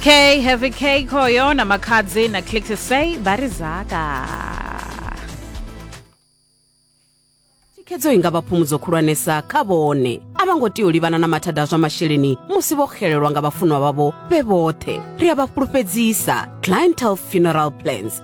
K, Heavy K, Koyo, na Makadzi, na Click to Say, Barizaka. thikhedzo i nga vha phumudzo khulwanesa kha vhone a vha ngo tea u livhana na mathada a zwa masheleni musi vho xelelwa nga vhafunwa vhavho vhe vhoṱhe ri a vha fhulufhedzisa clientele funeral plans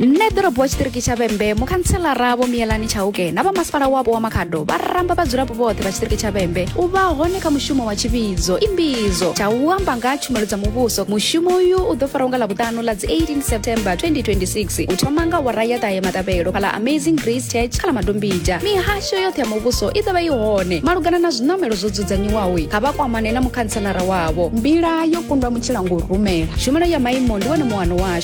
nṋe ḓorobo wa tshiṱiriki tsha vhembe mukhantshelara vho miyelani tshauke na vha masipala wapo wa makhado vha ramba vhadzulapo vhoṱhe vha tshiṱiriki tsha vhembe u vha hone kha mushumo wa tshivhidzo imbidzo tsha u amba nga tshumelo dza muvhuso mushumo uyu u ḓo faraho nga ḽavhuṱanu ḽa dzi 18 september 2026 u thoma nga wara ya ṱahe maṱavhelo kha ḽa amazing grace church kha ḽa madombija mihasho yoṱhe ya muvhuso i ḓovha i hone malugana na zwiṋamelo zwo dzudzanyiwaho kha vha kwamane na mukhantshelara wavho mbila yo kundwa mutshila ngo rumela tshumelo ya maimo ndi wone muwano washu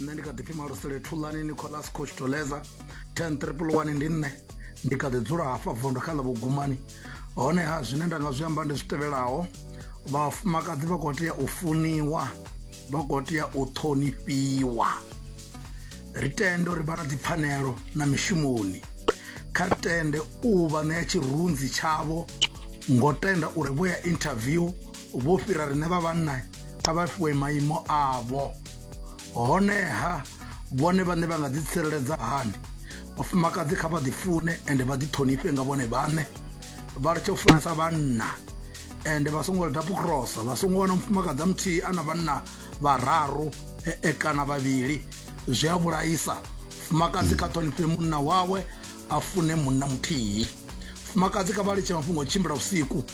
nṋe ndi kha ḓi pfi malusele thulani nicolas coach toleza 10 triple 1 ndi nṋe ndi kha ḓi dzula hafha vondo kha ḽa vhugumani honeha zwine nda nga zwi amba ndi zwi tevhelaho vhafumakadzi vha khou tea u funiwa vha khou tea u ṱhonifhiwa ri tende uri vha na dzipfanelo na mishumoni kha ri tende u vha ṋea tshirunzi tshavho ngo tenda uri vho ya interview vho fhira riṋe vha vhanna kha vha fhiwe maimo avho honeha vhone vhaṋe vha nga ḓi tsireledza hani vhafumakadzi kha vha ḓi fune ende vha ḓi ṱhonifhe nga vhone vhaṋe vha litshe u funesa vhanna ende vha songo lida pukrosa vha songo wana mufumakadzi a muthihi a na vhanna vhararu e, e, kana vhavhili zwi a vhulaisa fumakadzi kha ṱhonifhe munna wawe a fune munna muthihi fumakadzi kha vha litshe mafhungo tshimbila vhusiku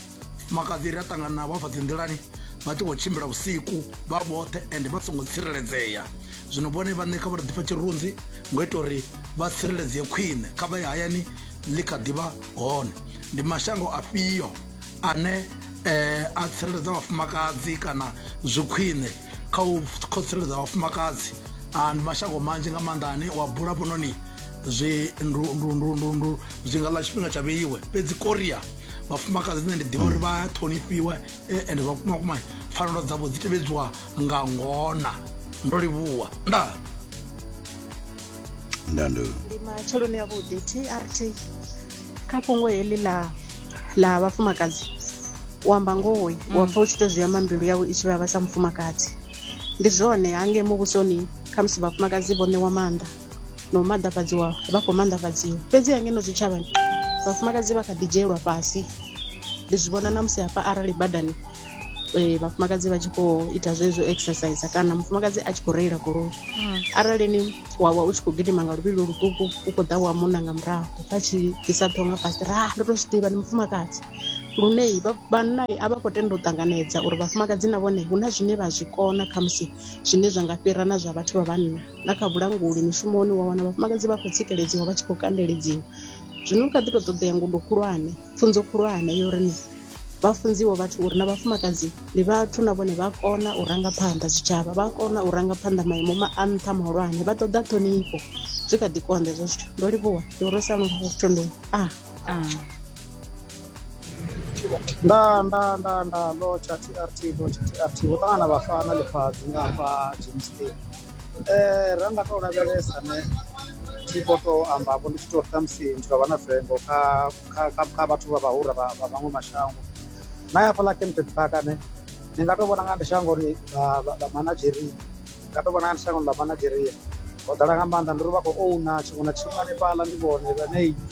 makhadzi ri a ṱangana navho afha dzi nḓilani vha tshi khou tshimbila vhusiku vha vhoṱhe ende vha songo tsireledzea zwino vhone vhaṋe kha vha ri ḓifha tshirunzi ngo ita uri vha tsireledzee khwine kha vha ye hayani ḽi kha ḓivha hone ndi mashango afhio ane eh, a tsireledza vhafumakadzi kana zwi khwine kha u kho tsireledza vhafumakadzi ah, ndi mashango manzhi nga maanḓa ane wa bula fhanoni zwi ndu- ndu- ndu- ndu- ndu- zwi nga ḽa tshifhinga tsha vheiwe fhedzi korea vhafumakadzi nṋe ndi ḓivha uri vha ṱhonifhiwa eh, and vhakumakuma pfanelo dzavho dzi tevhedziwa nga ngona ndo livhuwa nda nda ndo ndi matsheloni a vhuḓi trt kha fhungo heḽi ḽa ḽa vhafumakadzi u amba ngohoi mm. wa pfa u tshi to zwi amba mbilu yawe i tshi vhavha sa mufumakadzi ndi zwone hange muvhusoni khamusi vhafumakadzi vho ṋewa maanḓa na u maḓafhadziwa vha khou maanḓafhadziwa fhedzi ha ngeno zwitshavhani vhafumakadzi vha kha ḓi dzhielwa fhasi ndi zwi vhona na musi hafha arali badani eh, vhafumakadzi vha tshi khou ita zwezwo exercise kana mufumakadzi a tshi khou reila goloi hmm. arali ni wavha u tshi khou gidima nga luvhilo luṱuku u khou ḓa wa munna nga murahu vha tshi ḓisa ṱhonga fhasi ra ndo to zwi ḓivha ni mufumakadzi lune vhanna a vha khou tenda u ṱanganedza uri vhafumakadzi na vhone hu na zwine vha zwi kona khamusi zwine zwa nga fhira na zwa vhathu vha vhanna na kha vhulanguli mishumoni wa wana vhafumakadzi vha khou tsikeledziwa vha tshi khou kandeledziwa zwino kha ḓi tou ṱoḓea ngudo khulwane pfunzo khulwane yo ri ni vha funziwe vhathu uri na vhafumakadzi ndi vhathu na vhone vha kona u ranga phanḓa zwitshavha vha kona u ranga phanḓa maimo ma a nṱha mahulwane vha ṱoḓa ṱhonifho zwi kha ḓi konḓa ezwo zwithu ndo livhuwa ndi uri sa lungafhotondoni a ah. ah. nda nda nda nda ndo tsha trt ndo tsha trt ho ṱangana vhafana ḽifhadzi nga hafha jimston um eh, ra nga tou lavhelesa ne thi khou tou amba vho ndi tshi tou ri ṱhamusi ndi tou vha na vengo kha kha vhathu vha vhahura vha vhaṅwe mashango na ya fhaḽa kempton park ane ni nga tou vhona nga ndi shango ri ḽa manageria ni nga tou vhona nga ndi shango ḽa manageria ho ḓala nga maanḓa ndi ri vha khou ouna tshiṅwe na tshiṅwe hanefhaḽa ndi vhone vhanei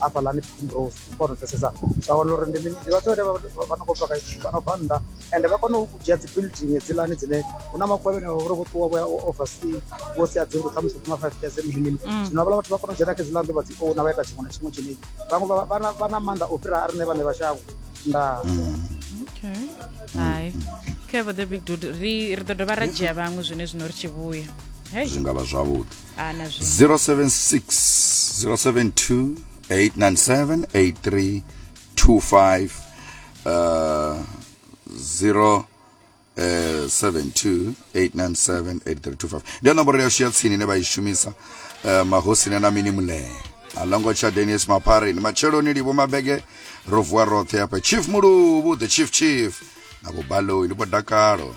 hafhaḽani primrose u kona u pfesesa vha wana uri ndi mini ndi vhathu vhane vha no khou bva vha no bva nnḓa ende vha kona u dzhia dzi building hedziḽani dzine hu na makhuwa vhene vhavha uri vho ṱuwa vho ya oversea vho sia dzi nnḓu khamusi kuma five years mini mini mm. zwino havhala vhathu vha kona u dzhena kha hedziḽa nnḓu vha dzi ouna vha ita tshiṅwe na tshiṅwe tshine vhaṅwe vha na maanḓa o fhira a riṋe vhane vha shango ndaa hai khe vho the big dude ri ri ḓo dovha ra dzhia vhaṅwe zwine zwino ri tshi vhuya zwi nga vha zwavhuḓi 076 072 897 8325 uh, 0 Uh, 72897835 ndiyo nomboro yashu ya tsini ine vha i shumisa uh, mahosini na mini mulee alongo tsha denis mapari ni matsheloni livho mabege ro vuwa roṱhe hafha chief muluvhu the chief chief na vho baloi ndi vho dakalo